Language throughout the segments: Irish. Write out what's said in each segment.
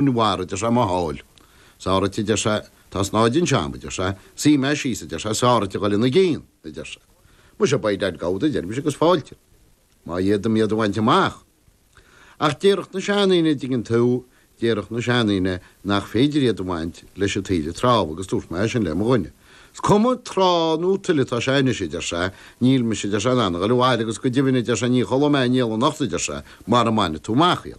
I mbarr, a deir sé, mo sháil. Sáraithe, a deir sé, tá snáithe den seamsa, a deir sé, sáigh mé síos, a deir sé, sáraithe dhul ina gcionn, a deir sé. Muise, beidh leigheas agad, a deirimse, agus fáilte. Má fhéadaim iad a bhaint amach. Ach déarfadh na seandaoine, a dtuigeann tú, déarfadh na seandaoine nach féidir iad a bhaint leis an taoille trá, agus dúirt mé sin le mo dhuine. 'S cuma trá nó tuile atá sé anois, a deir sé, níl mise, a deir sé, in ann dhul abhaile, agus go deimhin, a deir sé, ní chodlóidh mé néal anocht, a deir sé, mara mbainfidh tú amach iad.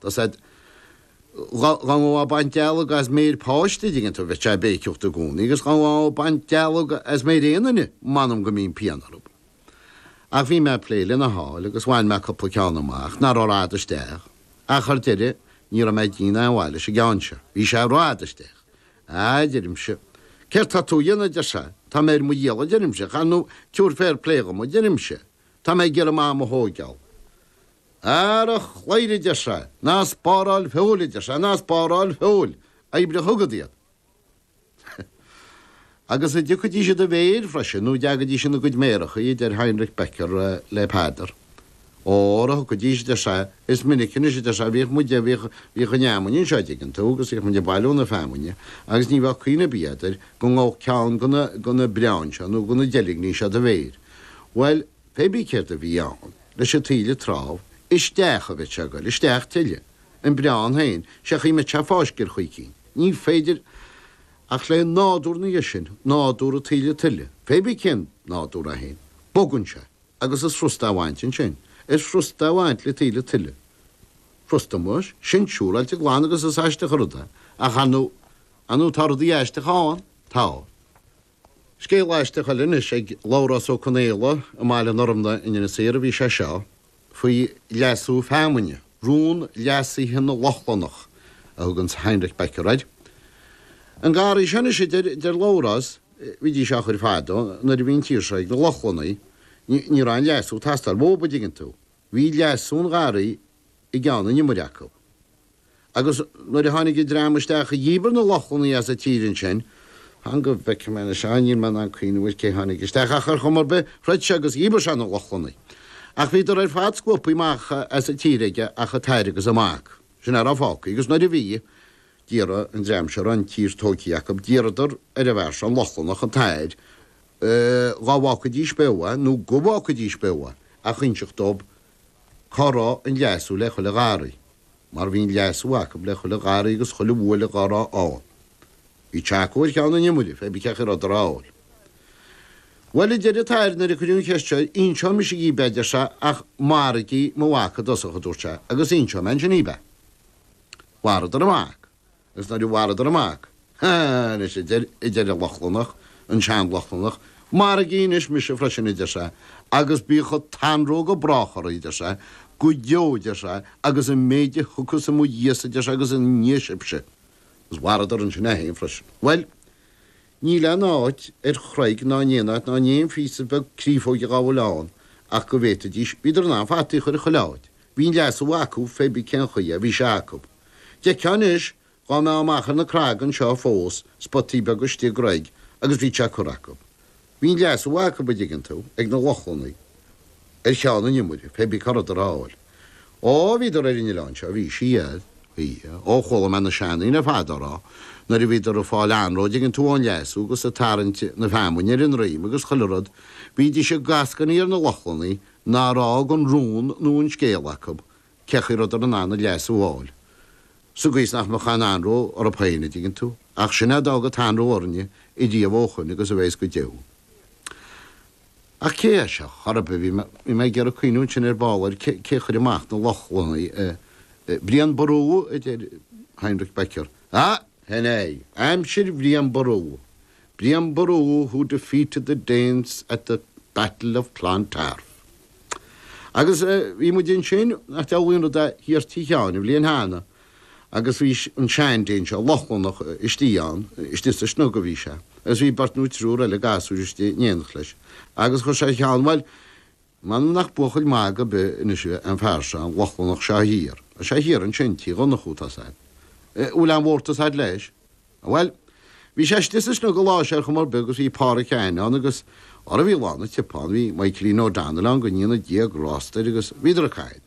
Tá siad go dona ag baint dealg as méir páiste dtuigeann tú bhíodh sé ag béiceacht i gcónaí agus go dona ag baint dealg as méir aon duine, m'anam go mbíonn pian orthub. Ach bhí mé ag plé lena sháil agus bhain mé cupla ceann amach nach raibh rófhada isteach, ach ar deireadh ní raibh mé ag déanamh a' bhail leis an gceann seo, bhí sé rófhada isteach. Á, a deirimse, céard tá tú a dhéanamh, deir sé, tá mé ar mo dhícheall a deirimse, chan fhiú, tabhair féar plé dhom a deirimse, tá mé ag iarraidh m'am a thóigeál. Ara, a deir sé, ná spáráil feoil, a deir sé, ná spáráil feoil, oibrigh chugat iad. Agus a dtiocfaidís i do mhéir freisin, nó dtéidís ina gcuid méarachaí, a deir Heinrich Becker le Peadar. Óra, thiocfaidís, a deir sé, is minic anois, a deir sé, bhíodh muid, bhíodh, bhíodh an fheamainn anseo, an dtuigeann tú, agus bhíodh muid ag bailiú na feamainne, agus ní bheadh cuimhne ar bith, adeir, go ngabhfadh ceann de na, de na breáin seo nó de na deilgní seo i do mhéir. Bhuel, Pébí céard a bhí ann leis a' taoille trábh is isteach a bheadh sé goil isteach tuilleadh, an breán héin, sé chaoi mbeadh sé ag fáisceadh ar chaoi eicínt, níl fhios ach lé nádúr na háite sin, nádúr a' taoille tuile, pébí cén nádúr é héin, bogann sé, agus is frusta a' bhaint ansin, is frusta a' bhaint le taoille tuile. Frusta muis, sin siúráilte glan agus is aisteach a' rud é, ach ar ndó', ar ndó' tá rudaí aisteacha ánn, tá. Scéal aisteach eile anois ag Labhrás Ó Conaola i mBaile an Fhormna in Inis Oírr a bhí sé seo, faoi leasú feamainne, rún leasaithe na Lochlannach a thug an tUasal Heinrich Becker air. An garraí seo anois, a deir Labhrás, bhídís á chur fadó, nuair a bhí an tír seo ag na Lochlannaigh, ní raibh aon leasú ag teastáil uathub, a dtuigeann tú, bhí leasú an gharraí i gceann an iomaire acu. Agus nuair a tháinig an dream isteach a dhíbir na Lochlannaigh as an tír ansin, fan go bhfeice mé anois, á níl mé in ann cuimhneamh cé tháinig isteach ach ar chuma ar bith, throid sé agus dhíbir sé na Lochlannaigh. Ach bhíodar ar fad scuabtha amach as an tír aige ach athair agus a mac, sin a raibh fágtha. Agus nuair a bhí, d'iarr an dream seo a raibh an tír tógtha acu, d'iarradar ar an bhfear seo, an Lochlannach, an t-athair, dhá bhfágfaidís beo é nó go bhfágfaidís beo é, a inseacht dóibh Cá raibh an leasú le chuile gharraí? Mar bhí an leasú acu le chuile gharraí agus chuile bhuaile dhá raibh ann. Bhí sé acu ar cheann an iomaire, féibí cén chaoi a rabhadar á fháil. Bhuel, a deir an t-athair nuair a cuireadh an cheist seo, inseoidh mise dhíbh, a deir sé, ach maraígí mo mhac i dtosach, a dúirt sé, agus inseoidh mé ansin dhíbh é. Mharaíodar an mac. Agus nuair a mharaíodar an mac, Há! anois a deir, a deir an Lochlannach, an Sean-Lochlannach, Maraigí anois mise freisin, a deir sé, agus bíodh an t-anró go brách oraibh, a deir sé, go deo, a deir sé, agus an méid a thiocfas i mo dhiaidhsa, a deir sé, agus ina ndiaidh sibhse. Agus mharaíodar ansin é féin freisin. Bhuel, níl aon áit ar chreig ná in aon áit ná in aon phíosa beag créafóige dhá bhfuil ann ach go bhféadfaidís, bhíodar in ann fataí a chur i chuile áit, Bhí an leasú acu féibí cén chaoi a bhí sé acu. D'fheictheá anois, dhá mbeifeá amach ar na creaga anseo fós, spotaí beaga istigh i gcreig agus bhíodh sé curtha acu. Bhí an leasú acu, a dtuigeann tú, ag na Lochlannaigh, ar cheann an iomaire, féibí cá rabhadar á fháil. Ó, bhíodar ar an oileán seo, bhí siad, bhí, ó chuala mé na seandaoine ar fad á rá, nuair a bhíodar ag fáil anró dtuigeann tú ón leasú agus ag tarraingt na feamainne ar a ndroim agus chuile rud, bhídís ag eascainí ar na Lochlannaigh, Nár fhág an rún nó an scéal acu cén chaoi a rabhadar in ann an leasú a fháil. Sa gcaoi is nach mbeadh aon anró orthu féin, a dtuigeann tú. Ach sin é a d'fhág an t-anró orainne ariamh ó shin agus a bhéas go deo. Ach cé é seo a chuir, bhí mé, bhí mé ag iarraidh cuimhniú ansin ar ball ar cé, cé chuir amach na Lochlannaigh eh. eh. Brian Ború? a deir Heinrich Becker. Ah! Sin é. Aimsir Bhrian Ború. Brian Boru who defeated the Danes at the Battle of Clontarf. Agus bhí muid ansin, nach diabhlaí an rud é, thiar Tigh Sheáin, an bhliain cheana, agus bhí an sean-Dane seo, Lochlannach, istigh ann, istigh sa snug a bhí sé, agus bhí beirt nó triúr eile gasúir istigh in éineacht leis, agus chuir sé a cheann, bhuel, M'anam nach buachaill magaidh ar bith anois an fear seo, an Lochlannach seo thiar, tá sé thiar ansin, Tigh Dhonnchú, tá 's a'd. Eh, bhfuil aon mhórtas a'd leis? Bhuel, bhí sé istigh sa snug an lá seo ar chuma ar bith agus bhí Pádhraic Sheáin ann agus, orra bhí lán an tsiopa ann, bhí Maidhcilín O'Donnell ann go ndéana Dia grásta air agus bhíodar a' caint.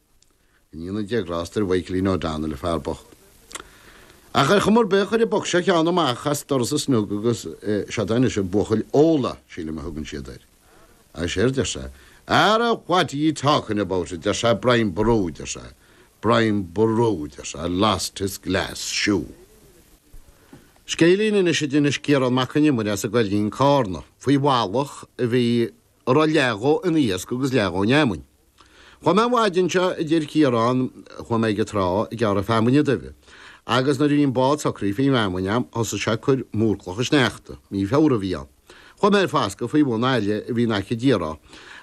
Go ndéana Dia grásta ar Mhaidhcilín O'Donnell, an fear bocht. Ach ar chuma ar bith, chuir an boc seo a cheann amach as doras an snug agus, eh, seod anois an buachaill, Óla, sílim a thugann siad air. Agus séard deir sé, Ara, what are ye talkin' about, a deir sé, Brian Ború, a deir sé, Brian Ború, a deir sé, lost his glass shoe. Scéilín anois a d'inis Ciarán Mac Con Iomaire as an gCoillín Carna faoi bhallach a bhí. a raibh leath dhó ina iasc agus leath dhó ina fheamainn. Chuaigh mé an mhaidin seo, a deir Ciarán, chuaigh mé ag an trá ag gearradh feamainne duibhe, agus nuair a bhí an bád socraithe faoin bhfeamainn agam, thosaigh sé ag cur múr clocha sneachta, mí Feabhra a bhí ann. Chuaigh mé ar fascadh faoi bhun aille a bhí in aice, déarfá,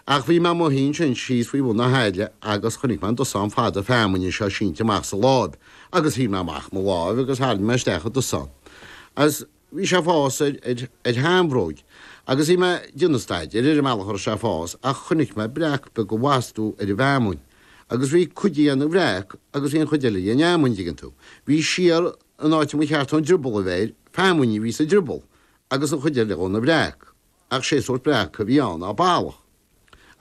ach bhí mé i mo shuí ansin síos faoi bhun na haille agus chonaic mé an dosán fada feamainne seo sínte amach sa láib, agus sháigh mé amach mo láimh agus tharraing mé isteach an dosán, agus. bhí sé ag fás ar shean-bhróig agus bhí mé ag déanamh staidéir ar an mbealach a raibh sé ag fás ach chonaic mé breac beag i bhfastú ar an bhfeamainn agus bhí cuid de ina bhreac agus bhí an chuid eile de ina fheamainn, an dtuigeann tú? Bhí siar in áit a mba cheart dhon drioball a bheith air, feamainn a bhí sa drioball agus an chuid eile dhó ina bhreac ach sé sórt breac a bhí ann, á, ballach.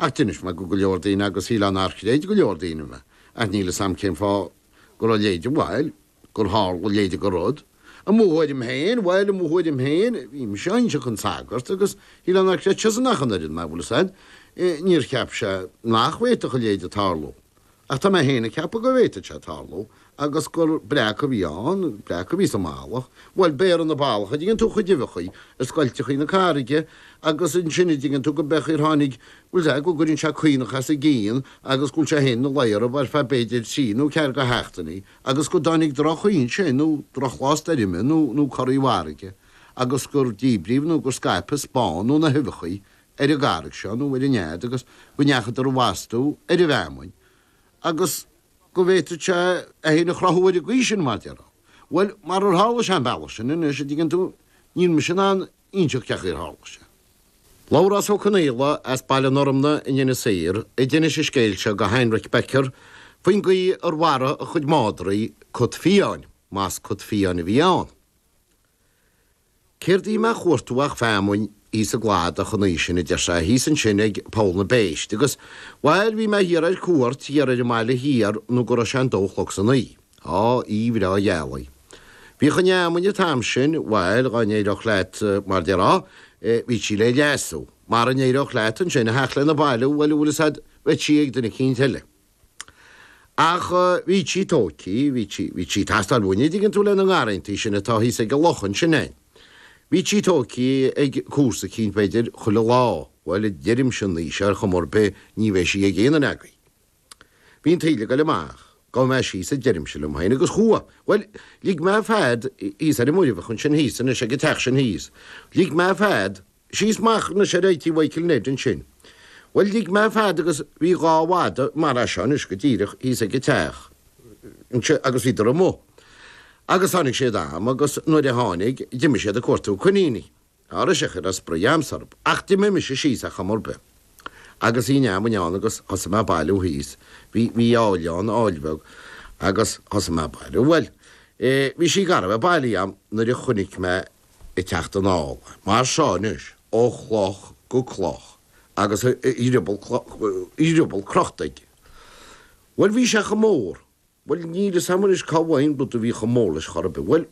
Ach d'inis mé go go leor daoine agus shílfinn nár chreid go leor daoine mé, ach níl 'fhios a'm cén fáth go raibh a leithéide, bhuel, gur tharla a leithéide go rud, i mo thuairim féin, bhuel i mo thuairim féin, bhí mise á inseacht dhon sagart, agus shílfinn nár chreid seisean ach an oiread mé, bhuel is ait, níor cheap sé nach bhféadfadh a leithéide tarlú, Ach tá mé féin ag ceapadh go bhféadfadh sé tarlú agus gur breac a bhí ann, breac a bhí sa mballach. Bhuel, beireann an ballach, a dtuigeann tú, a chuid uibheachaí ar scoilteachaí na carraige agus ansin, a dtuigeann tú, gurb é an chaoi ar tháinig, bhuel, sea, go gcuireann sé caonach as a gcionn agus go bhfuil sé féin ina luí orthu ar feadh b'fhéidir trí nó ceathair go sheachtainí agus go dtáinig drochaimsir nó drochlá stoirme nó, nó corraí farraige agus gur díbríodh nó gur scaipeadh spawn nó na huibheachaí ar an gcarraig seo nó ar an nead agus go ndeachadar i bhfastú ar an bhfeamainn agus go bhféadfadh sé é fhéin a chruthú ar an gcaoi sin, mar déarfá. Bhuel, marar tharla sé an bealach sin, anois, an dtuigeann tú, níl mise in ann inseacht cé chaoi ar tharla sé. Labhrás Ó Conaola as Baile an Fhormna in Inis Oírr a d'inis an scéal seo go Heinrich Becker faoin gcaoi ar mharaigh a chuid madraí cat fiáin, más cat fiáin a bhí ann. Céard a bhí mé a chuartú ach feamainn thíos i gcladach an oí sin, a deir sé, thíos ansin ag Poll na bPéist. Agus, bhail, bhí mé thiar ar cuairt, thiar ar an mBaile Thiar, nó go raibh sé an dó a chlog san oí. Á, oí bhreá ghealaí. Bhíodh an fheamainn an t-am sin, bhail, dhá n-éireodh leat, mar déarfá, eh, bhí sí le leasú, mara n-éireodh leat ansin, a theacht lena bailiú, bhail, a bhfuil 'fhios a'd, bheadh sí ag duine eicínt eile. Ach bhí sí tóigthí, bhí sí, bhí sí ag teastáil uainne, dtuigeann tú, le haghaidh na ngarrantaí sin atá thíos ag an loch ansin fhéin. Bhí sí tóigthí ag comharsa eicínt, b'fhéidir, chuile lá, bhuel, deirimse anois, ar chuma ar bith, ní bheidh sí ag aon cheann agaibh. Bhí an taoille ag goil amach, gabhfaidh mé síos a deirimse liom fhéin agus chuaigh, bhuel, lig mé fead thíos ar an muirbheach ansin thíos anois ag an teach sin thíos, lig mé fead, Síos Machair na Seirítí Mhichael Ned ansin. Bhuel, lig mé fead agus bhí dhá mhada mara seo anois go díreach thíos ag an teach anseo agus bhíodar amuigh. Agus tháinig siad a'm agus nuair a tháinig, d'imigh siad ag cuartú coiníní. Ar ndóigh sé chuile spraoi a'amsa orthub. Ach d'imigh mise síos ar chuma ar bith. Agus bhí feamainn ann agus thosaigh mé a' bailiú thíos. Bhí, bhí aill ann, aill bheag, agus thosaigh mé a' bailiú. Bhuel, eh, bhí sí gar a bheith bailí a'm nuair a chonaic mé, ag teacht anall mar seo anois ó chloch go cloch agus a dhrioball crochta aige. Bhuel, bhí sé chomh mór, bhuel, níl 'fhios a'm anois cá bhfaighinn rud a bhí chomh mór leis chor ar bith, bhuel,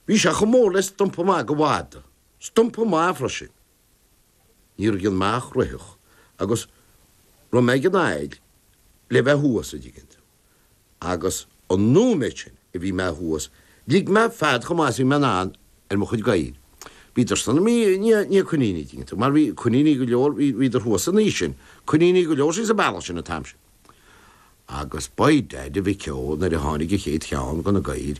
bhí sé chomh mór le stumpa maith de mhada, stumpa maith freisin. Ní raibh ann ach é a chroitheadh agus rith mé ag an aill le bheith thuas, an dtuigeann tú. agus an nóiméad sin a bhí mé thuas, lig mé fead chomh maith is a bhí mé in ann ar mo chuid gadhair. Bhíodar san am, bhí, ní, ní coiníní, an dtuigeann tú, mar bhí coiníní go leor, bhí, bhíodar thuas ansin, coiníní go leor síos an bealach sin an t-am sin. Agus by dad a mhic ó, nuair a tháinig an chéad cheann de na gadhair,